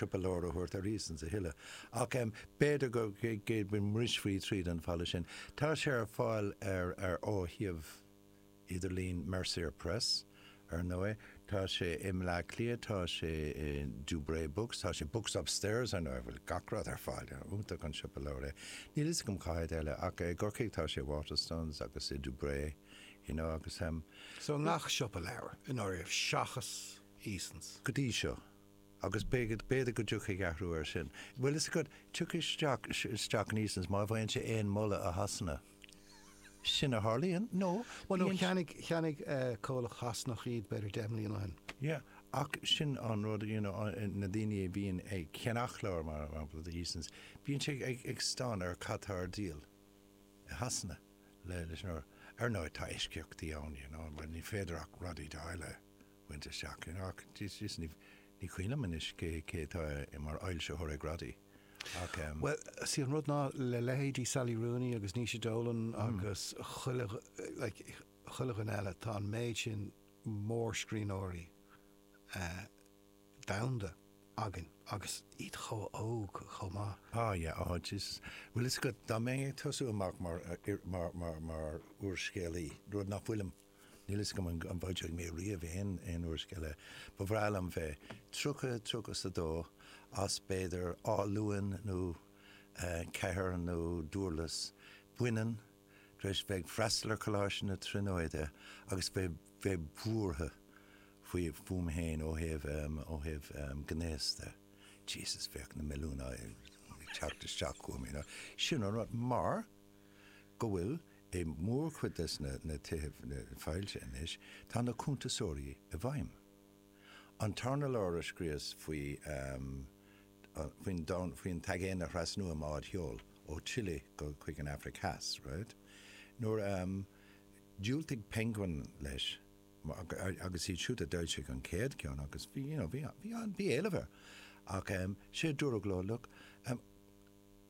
go leor a thabhairt ar Easons a thuilleadh ach b'fhéidir go mbrisfaí tríd an falla sin. Tá sé ar fáil ar ó shuíomh idirlín Mercier Press ar ndóigh. Tá sé i mBleá Cliath, tá sé i Dubray Books, tá sé Books Upstairs ar ndóigh, bhfuil gach rud ar fáil. Iontach an siopa leabhar é. Níl fhios agam cá háit eile ach i gCorcaigh tá sé i Waterstones agus i Dubray, you know, agus. So i ngach siopa leabhar i ndáiríre seachas Easons? Go dtí seo. agus b'fhéidir go dtiocfaidh athrú ar sin. bhfuil fhios agat, tiocfaidh isteach, isteach in Easons má bhfaigheann sé aon mholadh i Shasana. Sin a tharlaíonn nó Bhuel bíonn, cheannaigh, cheannaigh comhlacht Shasanach iad b'fhéidir deich mbliana ó shin. Yeah, ach sin an rud, you know, na daoine a bhíonn ag ceannach leabhar mar shampla do Easons, bíonn sé ag, ag stánadh ar cad tá ar díol i Shasana le, leis an, ar ndóigh tá eisceachtaí ann, you know, mar ní féidir ach Roddy Doyle a. bhaint isteach ann ach jeez ní cuimhin liom anois cé atá mar fhoilsitheoir ag Roddy ach em. Bhuel see an rud ná le leithéidí Sally Rooney agus Naoise Dolan agus chuile like chuile dhuine eile tá an méid sin mórscríbhneoirí eh domhanda againn agus iad chomh hóg chomh maith. Ah yeah oh jeez bhfuil fhios agat dá mbeinn ag tosú amach mar mar mar úrscéalaí rud ná fuilim, Níl fhios agam an bhfoilseoidh mé riamh aon aon úrscéal. Ba bhreá liom bheith tríocha tríocha is a dó as b'fhéidir Áth Luain nó Cathair nó Dúrlas baineann tar éis bheith ag freastal ar Coláiste na Tríonóide agus bheith bheith buartha faoi fúm féin ó thaobh ó thaobh gnéas de. Jesus bheadh na milliúin ag teacht isteach chugam you know. Sin an rud mar, go bhfuil, i mórchuid des na na tithe foilsithe anois, tá na cuntasóirí i bhfeidhm. An tarna leabhar a scríos faoi faoin faoin t-aigéan a thrasnú i mbád sheol ó Chile go chuig an Aifric Theas, raight? Nuair a dhiúltaigh Penguin leis agus iad siúd a d'fhoilsigh an chéad cheann agus bhí, you know, bhí bhí éileamh air ach sé a dúradh leo, look,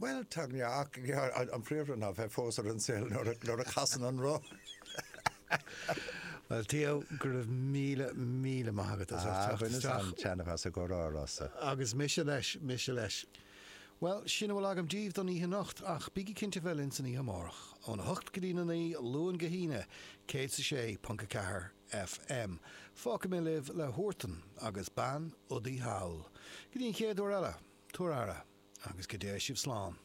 Bhuel, tá neart gearr an príomhrud ná bheith fós ar an saol nuair a chasann an roth. Bhuel, Theo, go raibh míle, míle maith agat as ucht teacht isteach. Agus an-taitneamh as an gcomhrá seo. Agus mise leis, mise leis. Bhuel, sin a bhfuil agam díbh don oíche anocht, ach bígí cinnte bheith linn san oíche amárach, óna hocht go dtí na naoi, Luan go hAoine, 106.4. FM. Fágfaidh mé libh le Huartan agus Bean Udaí Thall. Go dtí an chéad uair eile, tabhair aire agus go dté sibh slán.